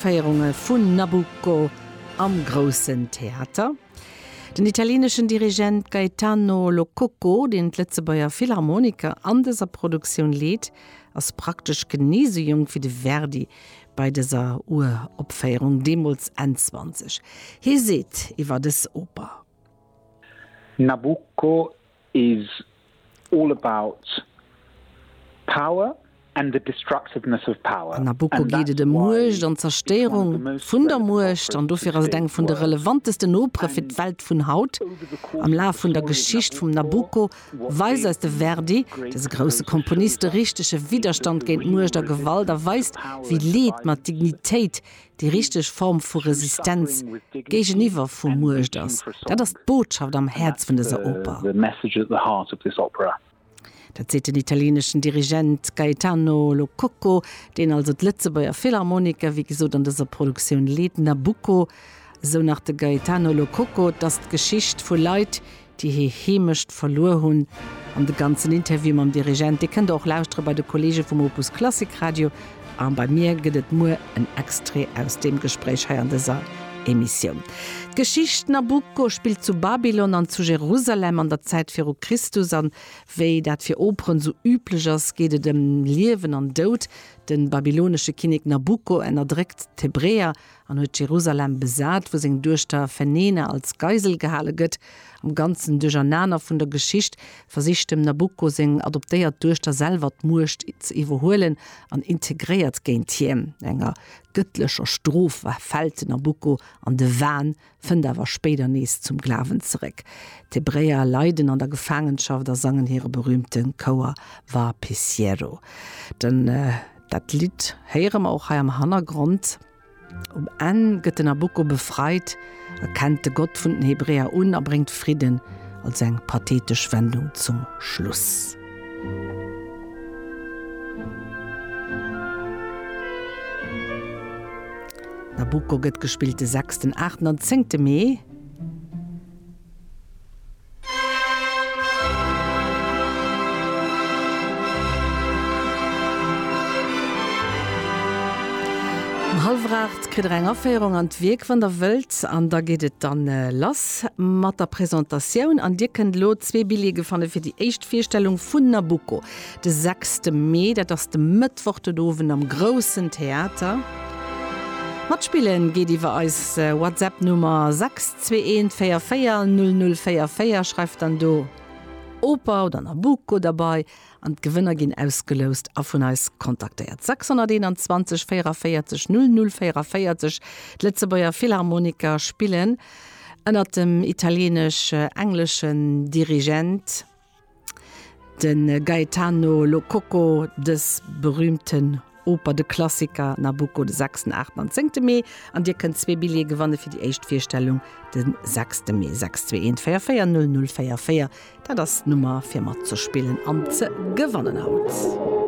D'Opféierunge vun Nabucco am Groussen Theater. Den italieneschen Dirigent Gaetano Lo Cocco, deen d'Lëtzebuerger Philharmoniker an dëser Produktioun leet, ass praktesch genee esou jonk wéi de Verdi bei dëser Uropféierung, deemools Enn 20. Hie seet iwwer dës Oper. Nabucco is all about power and the destructiveness of power. An Nabucco geet et ëm Muecht an d'Zerstéierung vun der Muecht, an dofir ass et eng vun de relevantesten Opere fir d'Welt vun haut. Am Laf vun der Geschicht vum Nabucco weist eis de Verdi, dëse grousse Komponist, de richtege Widderstand géint Muecht a Gewalt a weist, wéi Leed mat Dignitéit déi richteg Form vu Resistenz géigeniwwer vu Muecht ass. Dat ass d'Botschaft am Häerz vun dëser Oper. Dat seet den italieneschen Dirigent Gaetano Lo Cocco, deen also d'Lëtzebuerger Philharmoniker, wéi gesot, an dëser Produktioun leet. Nabucco, esou nach de Gaetano Lo Cocco, dat ass d'Geschicht vu Leit, déi hir Heemecht verluer hunn an de ganzen Interview mam Dirigent, dee kënnt der och lauschtere bei de Kollege vum Opus Klassik Radio a bei mir gëtt et muer en Extrait aus deem Gespréich hei an dëser Emissioun. D'Geschicht Nabucco spillt zu Babylon an zu Jerusalem an der Zäit viru Christus an wéi dat fir Operen sou üblech ass, geet et ëm Liewen an Doud. De babylonesche Kinnek Nabucco ënnerdréckt d'Hebräer an huet Jerusalem besat, wou seng Duechter Fenena als Geisel gehale gëtt. Am ganzen Duerchernaner vun der Geschicht versicht dem Nabucco seng adoptéiert Duechter selwer d'Muecht ze iwwerhuelen an integréiert géint hien. Enger gëttlecher Strof fält den Nabucco an de Wahn fënnt awer spéider nees zum Glawen zeréck. D'Hebräer leiden an der Gefaangenschaft a sangen hire berüümte Chouer Va piciero. Den dat Lidd héiere mer och hei am Hannergrond. Um Enn gëtt den Nabucco befreit, erkennt de Gott vun den Hebräer un a bréngt Fridden, also eng pathetesch Wendung zum Schluss. Nabucco gëtt gespillt de sechsten, aachten an zéngte Mee. Um hallwer aacht kritt der eng Aféierung an d'Wierk, wann der wëllt, an da geet et dann lass mat der Presentatioun. An dir kënnt elo zwee Billjeeë fanne fir déi éischt Virstellung vun Nabucco. De sechste Mee, dat ass de Mëttwoch den Owend am Groussen Theater. Matspille geet iwwer eis WhatsApp-Nummer 621 44 0044. Schreift dann do Oper oder Nabucco derbei an d'Gewënner ginn ausgeloust a vun eis kontaktéiert. 621 44 0044, D'Lëtzebuerger Philharmoniker spillen ënnert dem italieenesch-engleschen Dirigent. De Gaetano Lococo, dës berühmten Oper, de Klassiker Nabucco, de sechsten, aachten an zéngte Mee. An Dir kënnt zwee Billjeeë gewanne fir déi éischt Virstellung de sechste Mee. 62144 0044, dat ass d'Nummer fir matzespillen an ze gewannen haut.